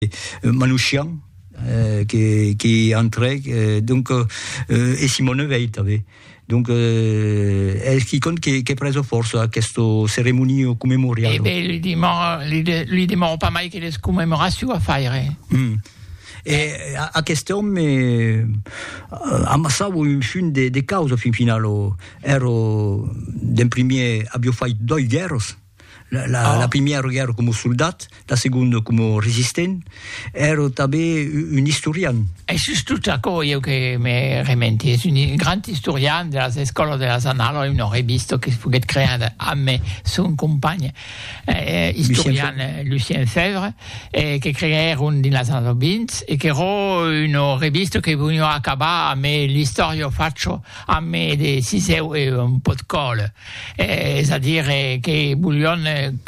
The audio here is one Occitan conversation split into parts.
euh, Manouchian, euh, que, que entrèc, euh, donc, euh, e Simone Veil tanben. Donc, euh, es qui compte que, que preso força aquesta ceremonia commemorial. Eh ben, li demò, li, de, li demò pas mai que les commemoracions a faire. Mm. E aquest òme eh, amassava un fin de, de causa fin final. Era, d'en primier, avió fait doi guerras, La, la, ah. la primièra guerra com soldat, la segunda com resistent, era també un historian. És just tot aquò jo que me rementi. És un grand historian de les escoles de les anales, una revista que es foguet creada amb son company eh, eh historian eh, Lucien Fèvre, eh, que creèron dins les anales 20 e que era una revista que venia acabar amb l'història facho, amb de siseu e un pot còle. es a dire que volion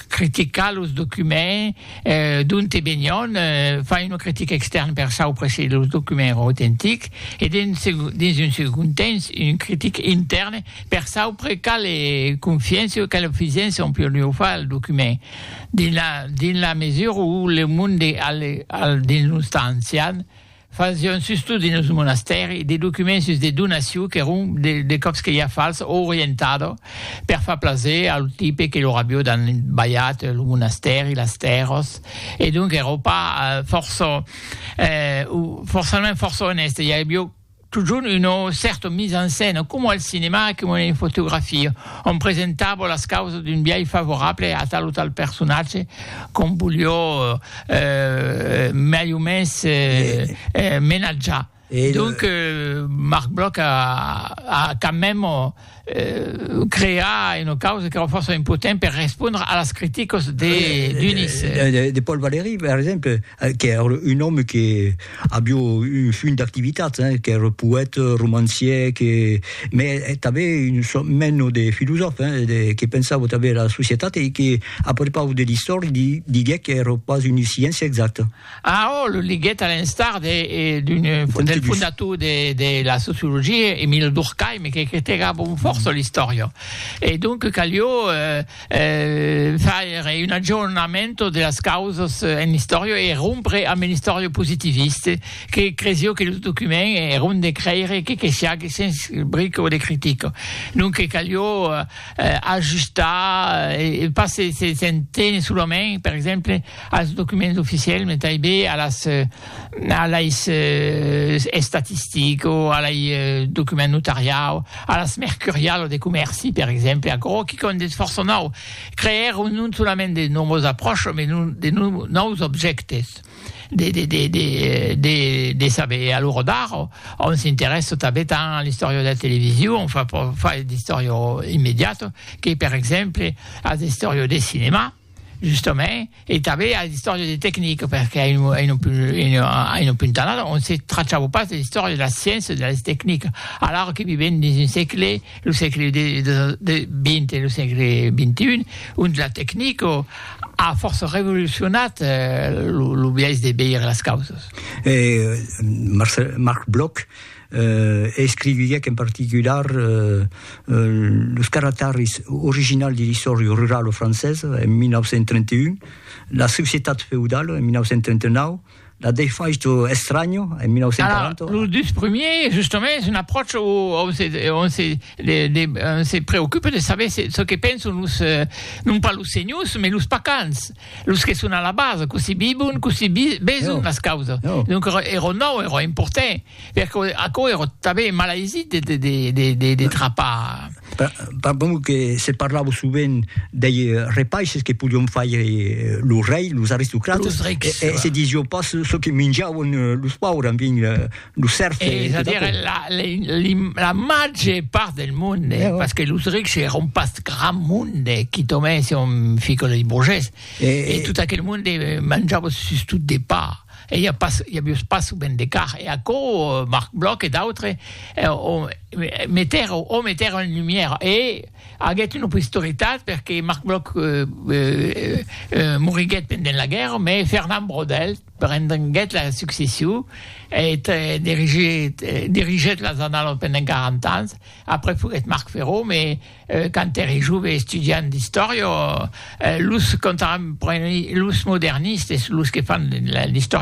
criticar los documents d'onte venion, far una critica extèrna per saupre se los documents èran autentics e dins un segond temps una critica intèrna per saupre quala confiança o quala fisença on podiá far al document dins la mesura où le monde al dins los temps ancians Fasión sustot dins lo monastèri de documents sus de donaciu qu'èron de còps que ja fals o orientada per far plaser a lo tipe que lor avió danbalhat lo monastèri, las tèrras e donc èra pas fòrça o forçament fòrça onèste, i avió totjorn una cèrta mise en scène coma al cinema e coma en fotografia ont presentava las causas d'un biais favorable a tal o tal personatge qu'ont voliá euh, mai o mens euh, eh, menatjar. Et Donc, euh, Marc Bloch a, a quand même euh, crea une cause que força impotent per respondre a las criticas de, d'Unis. De, de, de Paul Valéry, par exemple, euh, qui est un homme qui Avió un funt d'activitats, hein, qu'ère poète, romancier, que me tanben un sòrt meno de filosòf, hein, de que pensavo tanben era societat e que a prepaus de l'istòria di, diguec qu'ère pas una sciéncia exacta. Ah, oh, lo liguèt a l'enstar de d'un del fondator de de la sociologia, Emile Durkheim, que critegava un fòrça l'istòria. E donc calió, eh, faire un aggiornamento de las causas en l'istòria e rompre amb l'istòria positivista que cresió que lo document èra un de creire que que siague sens brica de critica. Donque calió ajustar e pas se se se tenir solament, per exemple, als documents oficiels, mai tanben a las a lei estatistico, a lei document notariau, a las mercurialo de comèrci, per exemple, aquò quicòm de fòrça nòu, creèr non solament de nouvas apròchas, mai de nòus objèctes de de de de de de saber. A l'ora d'ara, òm s'interèssa tanben tant a l'istòria de la television, enfin, pas d'istòria immediata, que per exemple a l'istòria de cinema. Justament, e tanben a l'istòria de tecnic, perque a un punt tanat on se trachava pas de l'istòria de la sciéncia e de las tecnic, alara que vivèm dins un sègle, lo sègle XX e lo sègle XXI, ont la tecnic a fòrça revolucionat lo biais de veire las causas. E Marc Bloch, e escriviuèc en particular los caractaris originals de l'Istòria rurala francesa en 1931, La societat feudala en 1939, La defaixa estranya en 1940. Alara, los dus primièrs, justament, es un apròcha ont se preocupa de saber çò que penson los, non pas los senhors, mas los pacans, los que son a la basa, cossí vivon, cossí veson las causas. Donc, èra nòu, èra important. Perque aquò ère tanben malaisit de trapar. Pas bon que se parlava sovent dei repaisses que podion faire lo rei, los aristocrates. Los rics. E se disió pas çò que minjavan los paures, en fin, los sèrfs e tot aquò. Ves-a-dire la, li, la màger part del monde, parce que los rics èran pas grand monde, quitament si on fica los bourgés, e tot aquel monde manjava sustot de pa. E ja pas, ja vos passo ben de car, e aquò, Marc Bloch e d'autres, o meter, o meter en lumière, e aguèt una posteritat, perque Marc Bloch moriguèt pendent la guèrra, mais Fernand Braudel prenguèt la succession, e dirigèt las Annalas pendent 40 ans, après foguèt Marc Ferraud, mais. Quand ère jove estudiant d'istòria, los contemporanis, los modernistes, los que fan l'istòria,